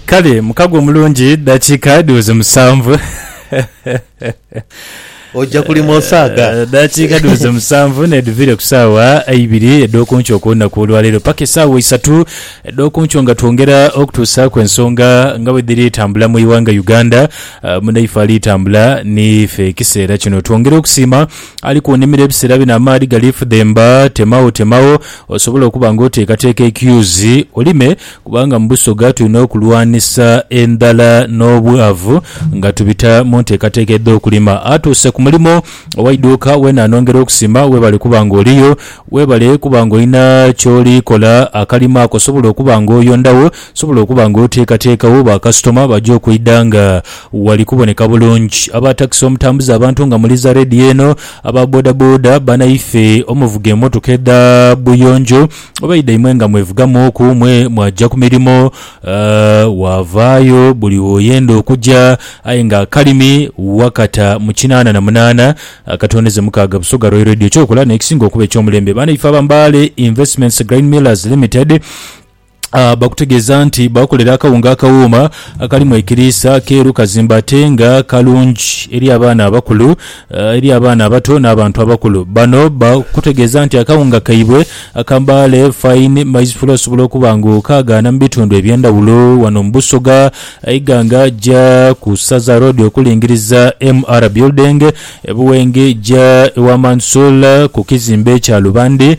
Kale mukago omulungi dakiika dhiweze musanvu. Oja kulima osaaga. Eh, dakiika dhiweze musanvu nedhiviire ku saawa eibiri edhokunkyo kulunaku olwaleero paka esaawa isatu edhokunkyo nga twongera okutuusaaku ensonga nga bwedhiri tambula mu iwanga Uganda eh, munaife ali tambula niife ekiseera kino. Twongera okusiima ali kunimiro ebiseera bino amaadhi gali fudhemba temagho temagho Osobola okuba nga oteekateeka ekiyuzi olime kubanga mu Busoga tulina okulwanisa endhala n'obwavu nga tubita mu nteekateeka edh'okulima. Atuuse ku mulimo ow'eidhuuka weena anhongera okusima. Weebale kuba ng'oliyo. Weebale kuba ng'olina ky'oli kola. Akalimo ako osobola okuba ng'oyondagho, osobola okuba ng'oteekateekagho bakasitoma baja okwidha nga wali kuboneka bulungi. Aba takisi omutambuza abantu nga muliza leediyo eno. Aba bodaboda banaife omuvuga emotoka edha buyonjo oba idhaimwe nga mwevugamu oku mwe mwaja ku mirimo wavaayo buli woyenda okuja aye nga akalimi wakata mu kinaana na munaana akatondeze mukaaga Busoga Royal Radio kyokola nekisinga okuba ekyomulembe banaife aba Mbale Investments Grain Millers Limited bakutegeeza nti baakolera akawunga akawuuma akalimu ekiriisa keeru kazimba ate nga kalungi eri abaana abakulu eri abaana abato n'abantu abakulu. Bano bakutegeeza nti akawunga kaibwe aka Mbale Fine Maize Flour osobola okuba ng'okaagaana mu bitundu eby'endhawulo wano mu Busoga aye ga nga ja ku Saza Road okulingiriza MR Building e Buwenge ja ewa Mansoor ku kizimbe kya Lubande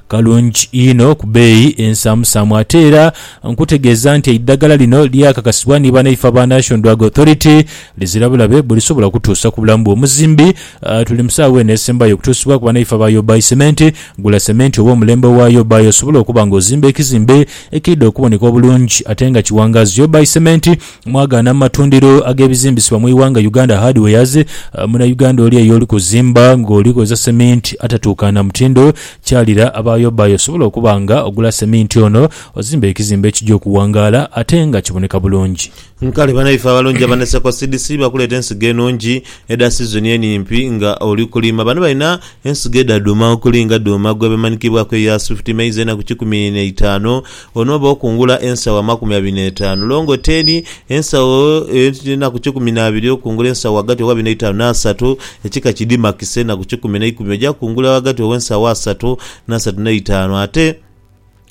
Kalungi inho ku beeyi ensaamusaamu ate era nkutegeeza nti eidhagala lino lyakakasibwa ni banaife aba National Drug Authority lizira bulabe bwelisobola kutuusa ku bulamu bw'omuzimbi. Tuli mu saawa eno esembayo okutuusibwa ku banaife aba Yobai Cement. Gula cement oba omulembe owa Yobai osobole okuba nga ozimba ekizimbe ekiidha okuboneka obulungi ate nga kiwangaazi Yobai Cement. Mwagaana mu matundiro ag'ebizimbisibwa mu ighanga Uganda Hardwares, Munauganda oli eyo oli kuzimba ng'oli kozesa seminti atatuukaana mutindo, kyalira abaayobaayo osobole okuba nga ogula seminti ono ozimbe ekizimbe ekija okuwangaala ate nga kiboneka bulungi. Kale banaife abalungi aba Naseko Seeds bakuleeta ensigo enungi edha sizoni enimpi nga oli kulima. Bano balina ensigo edha dhuuma okuli nga dhuuma gwebemanhikibwaku eya Swift Maize enaku kikumi neitaanu, Onooba okungula ensawo amakumi abiri n'etaanu, longo teni, ensawo edh'enaku kikumi na biri, okungula ensawo ghagati gh'abiri n'eitaanu n'asatu, ekika ki dimakise, enaku kikumi na ikumi, oja kungula ghagati gh'ensawo asatu n'asatu n'eitaanu. Ate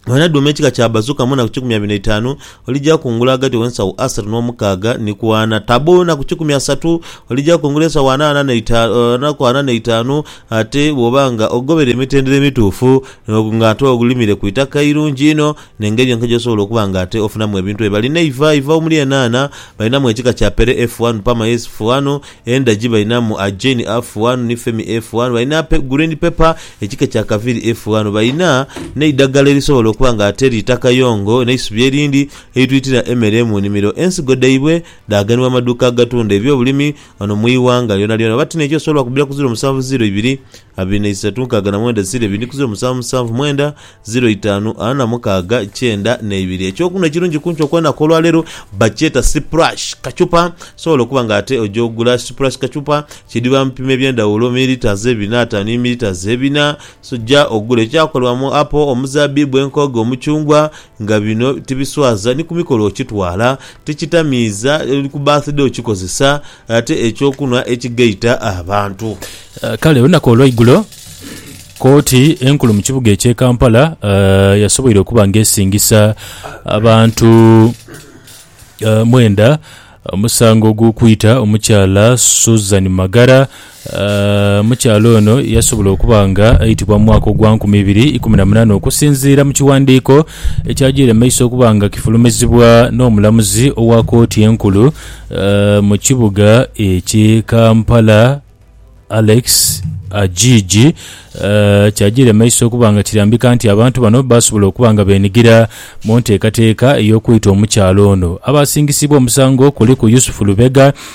wanadhuuma ekika kya bazuka mu naku kikumi abiri n'eitaanu, olija kungula ghagati gh'ensawo asatu n'omukaaga ni ku ana. Tabo enaku kikumi asatu, olija kungula ensawo ana, ana n'eitaanu, ate bw'oba nga ogobeire emitendera emituufu Ogwo nga ate ogulimire ku itaka eirungi inho, n'engeri yonka gy'osobola okuba nga ate ofunamu ebintu ebyo. Balina eiva, eiva omuli enhaanha, balinamu ekika kya Pere F one, Parma S F one, endagi balinamu Agen A F one ni Femi A F one, balina green pepper ekika ekya Kaviri F one, balina n'eidhagala erisobola okuba nga ate liita kayongo n'eisubi erindi eritwitira emere mu nimiro. Ensigo dhaibwe dhaaganibwa mu maduuka agatunda eby'obulimi ghano mu ighanga lyonalyona oba ti n'ekyo osobola kubira ku ziro musanvu ziro ibiri. Abiri na isatu nkaaga na mwenda ziro ebiri ni ku ziro musanvu musanvu mwenda ziro itaanu ana mukaaga kyenda na ibiri. Eky'okunhwa ekirungi ku nkyo kw'enaku olwa leero bakyeta Sipurashi kachupa. Osobola okuba nga ate oja ogula Sipurashi kachupa kidhiba mu bipimo eby'endhawulo, mililitas ebiri n'ataanu ni mililitas ebina. Oja ogula ekyakolebwa mu apo, omuzabbibu, enkooge, omuchungwa nga bino tibiswaza ni ku mikolo okitwala, tikitamiiza, ni ku birthday okikozesa Ate eky'okunhwa ekigaita abantu. Kale olunaku olweigulo kooti enkulu mu kibuga ekye Kampala yasoboire okuba nga esingisa abantu mwenda omusango ogw'okwita omukyala Susan Magara Omukyala ono yasobola okuba nga aitibwa mu mwaka ogwa nkumi ibiri ikumi na munana okusinziira mu kiwandiiko ekyajiire mu maiso okuba nga kifulumizibwa n'omulamuzi owa kooti enkulu mu kibuga ekye Kampala Alex Ajiji kyajiire mu maiso okuba nga kirambika nti abantu bano basobola okuba nga benigira mu nteekateeka ey'okwita omukyala ono. Abasingisibwa omusango kuliku Yusuf Lubega,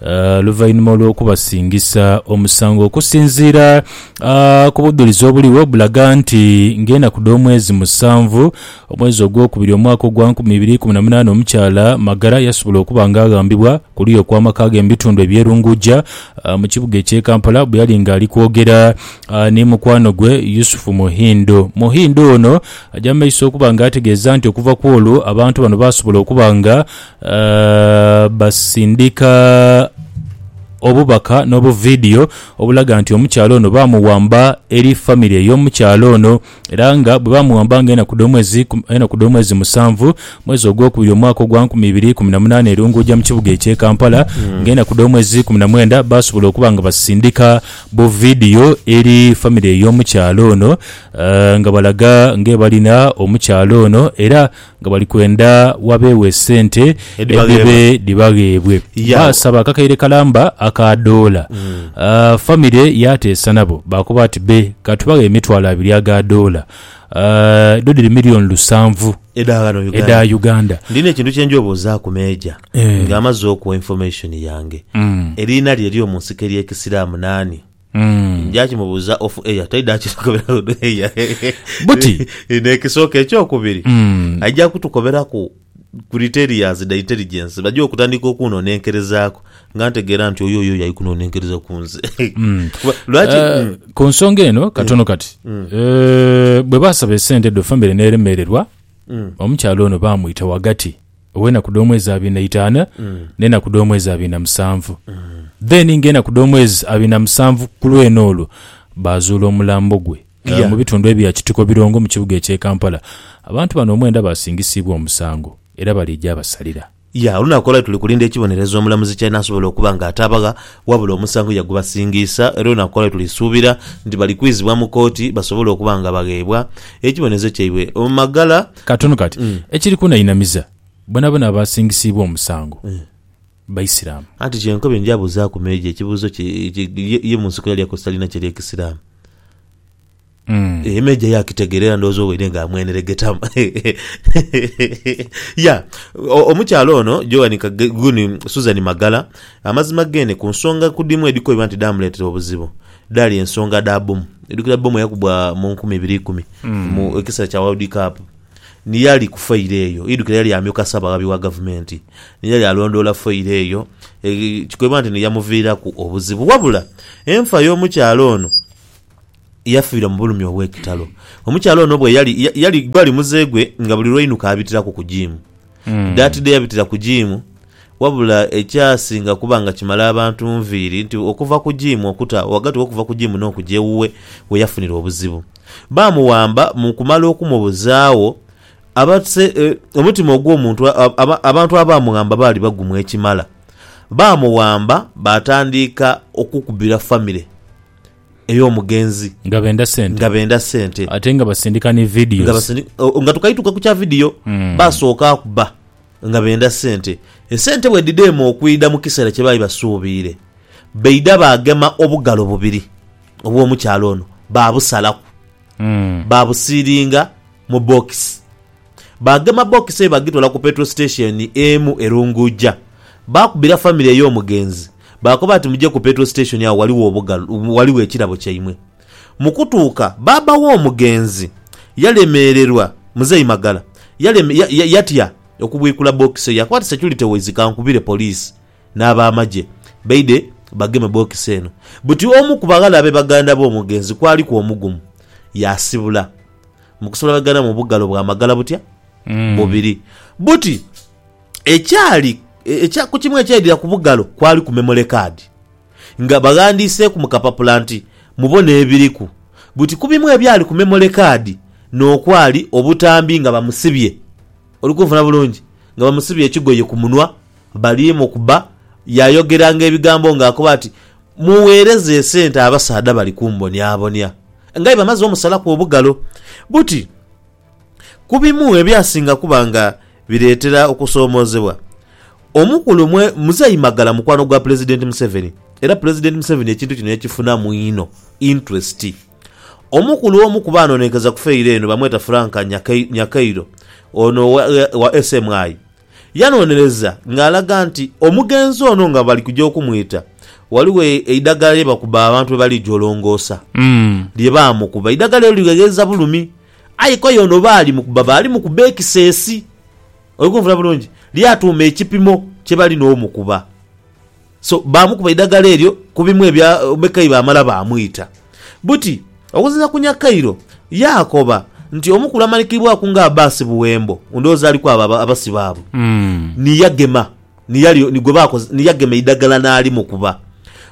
Oluvainhuma olw'okubasingisa omusango okusinziira ku budhulizi obuligho bulaga nti ng'enaku dh'omwezi musanvu omwezi ogwokubiri omwaka ogwa nkumi ibiri ikumi na munaana omukyala Magara yasobola okuba nga aghambibwa kuluya okw'amakaage mubitundu eby'e Lungujja mukibuga eky'e Kampala bweyali nga ali kwogera ni mukwanogwe Yusuf Muhindo. Muhindo ono aja mumaiso okuba nga ategeeza nti okuva kw'olwo abantu bano basobola okuba nga Baasindika obubaka n'obuvidiyo obulaga nti omukyala ono baamuwamba eri famire ey'omukyala ono era nga bwe baamuwamba nga enaku dh'omwezi enaku dh'omwezi musanvu mwezi ogwokubiri omwaka ogwa nkumi ibiri ikumi na munaana erunguuja mu kibuga eky'e Kampala nga enaku dh'omwezi ikumi na mwenda baasobola okuba nga basindika buvidiyo eri famire ey'omukyala ono nga balaga ng'ebalina omukyala ono era nga bali kwenda wabeegho esente edhibe dhibagheebwe. Baasaba akakaire kalamba aka doola. Famire yaateesa nabo baakoba ati, Be, ka tubaghe emitwalo abiri aga doola. Edho dhiri milioni lusanvu edha Uganda. Ndina ekintu kye njia obuuzaaku Meeja ng'amaze okuwa information yange. Eriina lye ery'omu nsiko ery'Ekisiraamu naani? Njakimubuza off air taida kitukoberaku on air. Buti. Nekisooka ekyokubiri Mm. aija kutukoberaku criterias dha intelligence baje okutandika okunonenkerezaku nga ntegeera nti oyo oyo yali kunonenkereza kunze Kuba- lwaki Eh, Mm. ku nsonga eno katono kati Eh, bwe baasaba esente dho famire n'eremererwa omukyala ono baamwita wagati ow'enaku dh'omwezi abiri na itaanu n'enaku dh'omwezi abiri na musanvu. Then ng'enaku dh'omwezi abiri na musanvu ku lw'eno olwo, baazuula omulambo gwe eh, Yeah. mu bitundu ebya Kitiko Birongo mu kibuga eky'e Kampala. Abantu bano omwenda baasingisiibwa omusango era bali egyabasalira. Ya, olunaku olwali tuli kulinda ekibonerezo omulamuzi ky'anaasobola okuba nga atabagha, wabula omusango yagubasingiisa era olunaku olwali tuli suubira nti bali kwizibwa mu kooti basobole okuba nga bagheebwa ekibonerezo kyaibwe maghala. Katono kati, ekiri kunainamiza, bonabona abaasingisiibwa omusango Baisiramu. Anti kyenkoba endya abuzaaku Meeja ekibuuzo kye ki ye ye mu nsiko yali akozesa liina ki erye Kisiraamu. Eeh Meeja yaakitegera era ndowooza owaire nga amweneregetamu. Ya, o, omukyala ono Joan Ka, Gun, Susan Magala, amazima geene ku nsonga ku dhimu edhikobibwa nti dhaamuleetera obuzibu, Dhaali ensonga dha bbomu. Oidhukira bbomu eyakubwa mu nkumi ibiri ikumi mu ekiseera kya World Cup? Ni yali ku failo eyo. Oidhukira yali amyuka Ssaabaghabi wa Gavumenti, ni yali alondoola failo eyo. Kikoibwa nti ni yamuviiraku obuzibu. Wabula enfa y'omukyala ono yafiira mu bulumi obw'ekitalo. Omukyala ono bwe yali, yali, gwali muze gwe nga buli lw'ainuka abitiraku ku jiimu. Daatide yabitira ku jiimu, wabula ekyasinga kuba nga kimala abantu nviiri nti okuva ku jiimu okuta ghagati w'okuva ku jiimu n'okuja ewuwe we yafunira obuzibu. Baamuwamba mu kumala okumubuzaagho, abase, e, omutima ogw'omuntu a, aba, abantu abaamughamba baali bagumu ekimala. Baamuwamba baatandika okukubira famire. ey'omugenzi nga benda sente nga benda sente ate nga basindika ni videos nga basindi oh, nga tukaituka ku kya video mm. basooka akuba nga benda sente esente bwedidema okwida mu kiseera kye baali basuubiire beida bagema obugalo bubiri obw'omukyalo ono babusalaku mm. babusiiringa mu bokisi Baagema bookisi eyo baagitwala ku petro sitesheni emu e Lunguuja. Baakubira famire ey'omugenzi, baakoba ati muje ku petro sitesheni agho ghaligho obugalu, ghaligho ekirabo kyaimwe. Mu kutuuka, baaba w'omugenzi yalemeererwa, Muzei Magala, yaleme, ya, ya, yatya okubwikula bookisi eyo. Yakoba ati, Securite waise kankubire poliisi n'abaamagye baidhe bageme bookisi eno. Buti omu ku baghala abe baganda b'omugenzi kwaliku omugumu, yaasibula. Mu kusolagana mu bugalo bwa magala butya? Bubiri. Buti ekyali e- ekya ku kimu ekyaidhira ku bugalo kwali ku memory card nga baghandiiseeku mu kapapula nti mubone ebiriku. Buti ku bimu ebyali ku memory card n'okwali obutambi nga bamusibye. Oli kunfuna bulungi? Nga bamusibye ekigoye ku munwa, bali mukuba. Yaayogeranga ebigambo ng'akoba ati, Mugheereze esente abasaadha bali kumbonyabonya. Ng'aye bamaze omusalaku obugalo. Buti ku bimu ebyasinga kuba nga bireetera okusoomoozebwa, omukulu mwe, Muzeeyi Magala mukwano gwa Pulezidenti Museveni era Pulezidenti Museveni ekintu kino yakifunamu inho interest. Omu ku lw'omu ku baanonenkeza ku feyiro eno bamweta Frank Nyakairo, ono wa SMI, yanonereza ng'alaga nti omugenzi ono nga bali kuja okumwita ghaligho eidagala lye bakuba abantu bwe bali jolongoosa lye baamukuba. Eidagala eryo ligheghereza bulumi aye koi ono baali mukuba baali mukuba ekiseesi, oli kunvuna bulungi, lyatuuma ekipimo kye bali n'omukuba. So baamukuba eidagala eryo ku bimu ebya Bekai baamala baamwita. Buti, okusinziira ku Nyakairo, yaakoba nti omukulu amanhikiibwaku nga Abbas Buwembo, ndhowooza ali ku abo abasibe abo, ni yagema ni yali ni gwe baakoze ni yagema eidagala n'alimukuba.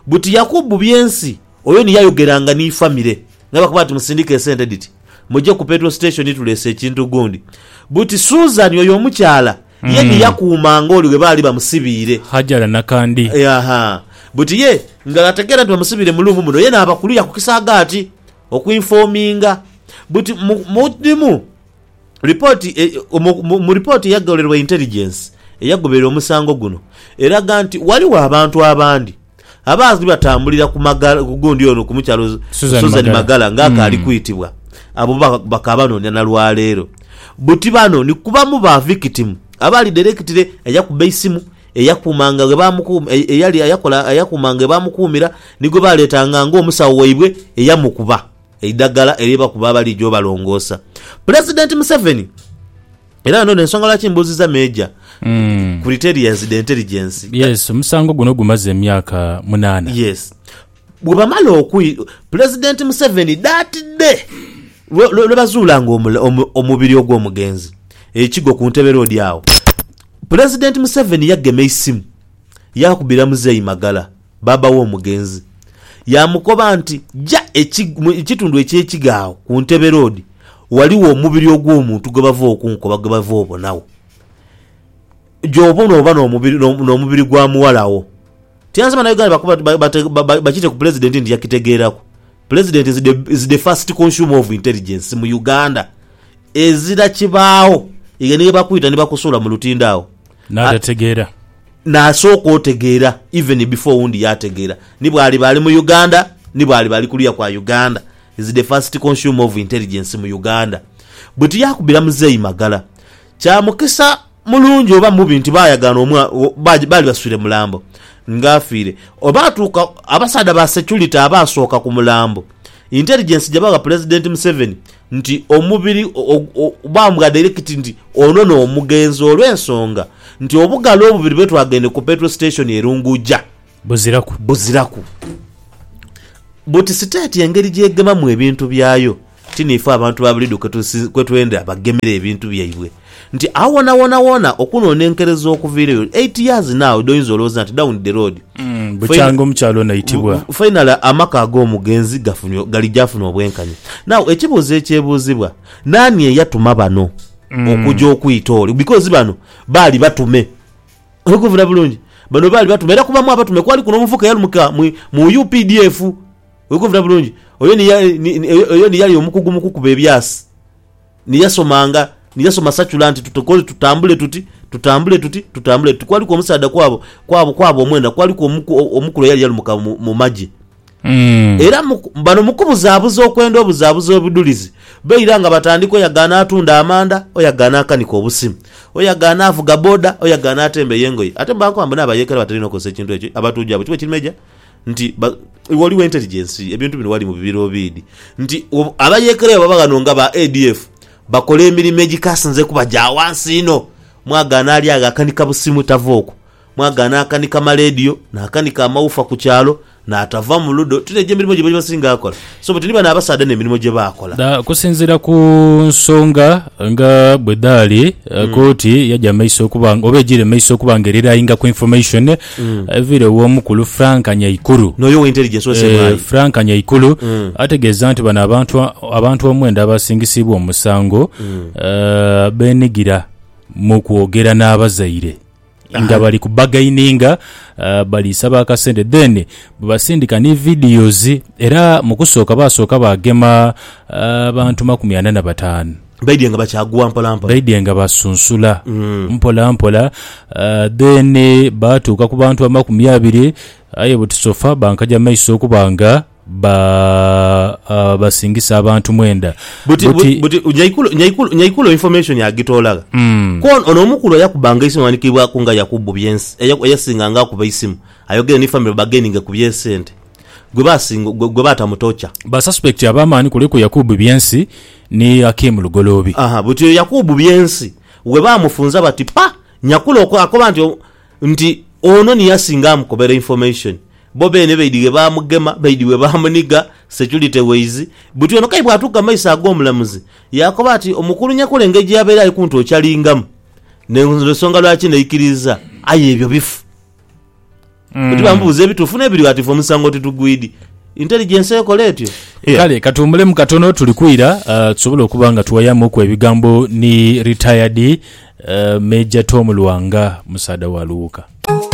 Buti Yakubu Byensi oyo ni yayogeranga ni famire nga bakoba nti musindike esente dhiti muje ku petrol station tuleese ekintu gundi. Buti Susan oyo omukyala Ye ni yakuuma ng'oli ghe baali bamusibiire. Hajara Nakandi. Yaaha. Buti ye nga ategeera nti bamusibiire mu luumu muno, ye naabakuluya ku kisaagaati okwinfoominga. Buti mu, mu dhimu ripooti e, mu, mu, mu ripooti eyagholerwa Intelligence eyagoberera omusango guno, eraga nti ghaligho abantu abandi, Abaazwi batambulira ku magala ku gundi ono ku mukyalo Susan Magala ng'akaali kwitibwa abo bo bakaabanoonia na lwa leero. Buti bano ni ku bamu ba vikitimu abaali dairekitire eyakuba eisimu, eyakuumanga ghe baamukuum eyali eyakola eyakuumanga ghe baamukuumira ni gwe baaleetanga ng'omusawo waibwe eyamukuba eidagala erye bakuba abaliija obalongoosa. Pulezidenti Museveni. Era ghano n'ensonga lwaki mbuuziza Meeja ku Retailers de Intelligence. Yes, omusango guno gumaze emyaka munaana. Yes. Bwe bamala okwi, Pulezidenti Museveni dhaatidde lwe bazuula nga omubiri ogw'omugenzi e Kigo ku Ntebe Road agho, Pulezidenti Museveni yagema eisimu yaakubira Muzeeyi Magala. bbaabba w'omugenzi, yaamukoba nti, Ja eki, mu ekitundu eky'ekigo agho ku Ntebe Road, ghaligho omubiri ogw'omuntu gwe bava okunkoba gwe bava obonagho. Gy'oba onooba n'omubiri, n'o, n'omubiri gwa muwala wo. Tyanze Bannayuganda baku, ba, ba, bate, ba, ba, bakite ku Pulezidenti nti yakitegeeraku. Pulezidenti is the, is the first consumer of intelligence mu Uganda. Ezira kibaagho. Eyo niyo ye bakwita ni bakusuula mu lutindo agho. N'atategeera. N'asooka otegeera even before owundi yaategeera. Ni bw'aliba ali mu Uganda, ni bw'aliba ali kuluya kwa Uganda, is the first consumer of intelligence mu Uganda. Bwe tuyaakubira Muzeeyi Magala, kya mukisa mulungi oba mubi nti baayagaana omwa, baali baswire mulambo nga afiire. Olwatuuka abasaadha ba security abaasooka ku mulambo, intelligence gye bagha Pulezidenti Museveni, nti omubiri bambwa dairekiti nti ono n'omugenzi olw'ensonga nti obugalo obubiri bwetwagende ku Petro Station e Lunguja buziraku buziraku buti siteeti engeri gy'egemamu ebintu byayo ti niifwe abantu ba Buliidho kwetwendha bagemera ebintu byaibwe. Nti agho wonawona wona okunonenkereza okuviireyo eight years now dhoyinza olowooza nti down the road. Bukyanga omukyala ono aitibwa. Finally amaka ag'omugenzi gafunye gali gyafuna obwenkanya. Now ekibuuzo ekyebuuzibwa, naani eyatuma bano okuja okwita ole? Because bano baali batume. Oli kunvuna bulungi? Bano baali batume era kubamu abatume kwaliku n'omuvubuka eyalumuka mu updf. Oli kunvuna bulungi? Oyo ni yali omukugu mu kukuba ebyasi. Ni yasomanga, ni yasoma sacula nti tutukole, tutambule tuti, tutambule tuti, tutambule tuti. Kwaliku omusaadha kwabo, kwabo, kwabo omwena, kwaliku omuku, omukulu eyali yalumuka mu, mu magye. Mm. Era mu, bano mukubuzabuza okwenda obuzabuza obudhulizi, beira nga batandika oya gaana atunda amanda, oya gaana akanika obusimu, oya gaana avuga boda, oya gaana atembeya engoye. Ate bwe bakoba mbu n'abayeekera batera inho okozesa ekintu ekyo, abatuuja abo, kigho kiri meja? Nti, Ba, iwe oli w'enteligensi, ebintu bino wali mu bibiro obiidhi. Nti, Abayeekera bwe baba ghano nga ba ADF, bakola emirimo egikasinze kuba gya ghansi inho. Mwagaana ali agho akanika busimu tava okwo, mwagaana akanika maleediyo, naakanika amawufa ku kyalo, naatava mu ludo. Tino egyo emirimo gye basinga kola. So buti ni bano abasaadha n'emirimo gye baakola. Dha kusinziira ku nsonga nga bwe dhaali, kooti yaja mu maiso okuba nga, oba ejiire mu maiso okuba nga erirainga ku information eviire ew'omukulu Frank Nyaikuru. N'oyo owa Intelligence owe Ssemwaayi. Eh, Frank Nyaikuru ategeeza nti bano abantu abantu omwenda abasingisiibwa omusango eh, beenigira mu kwogera n'abazaire. nga bali ku bargaininga uh, bali saba akasente then bwebasindika ni videos era mukusooka basooka bagema abantu uh, makumi ana na batano baidye nga bakyaguwa mpolampola baidye nga basunsula mm. mpolampola uh, then batuuka ku bantu amakumi abiri aye buti sofa bankaja maiso okuba nga ba, a, basingisa abantu mwenda. Buti, Buti, buti, buti Nyaikulo, Nyaikulo, Nyaikulo information agitoola gha? Mm. Ku ono, ono omukulu eyakubbanga eisimu aghandikiibwaku nga Yakubu Byensi, eya, eyasinganga akuba eisimu, ayogere ni family bageninge ku bye sente, gwe basinga, gwe, gwe baata mu torture. Ba suspect ab'amaani kuliku Yakubu Byensi ni Akim Lugoloobi. Aha, buti oyo Yakubu Byensi, we baamufunza bati, Pa! Nyakulo akoba nti, nti ono niye asinga amukobera information bo beene beidhighe baamugema, beidhighe baamuniga, security wise buti ono kayi bwatuuka mu maiso ag'omulamuzi yaakoba ati omukulu Nyakura engeri gyeyabaire ali kuntwokyalingamu n'ensonga lwaki naikiriza aye ebyo bifu buti bamubuuza ebituufu n'ebirighatifu omusango titugwidi. Intelligence ekola etyo? Yeah. Kale katuwumulemu katono tuli kwira uh, tusobole okuba nga tuwayamuku ebigambo ni retired uh, Major Tom Lwanga musaadha wa Luwuka.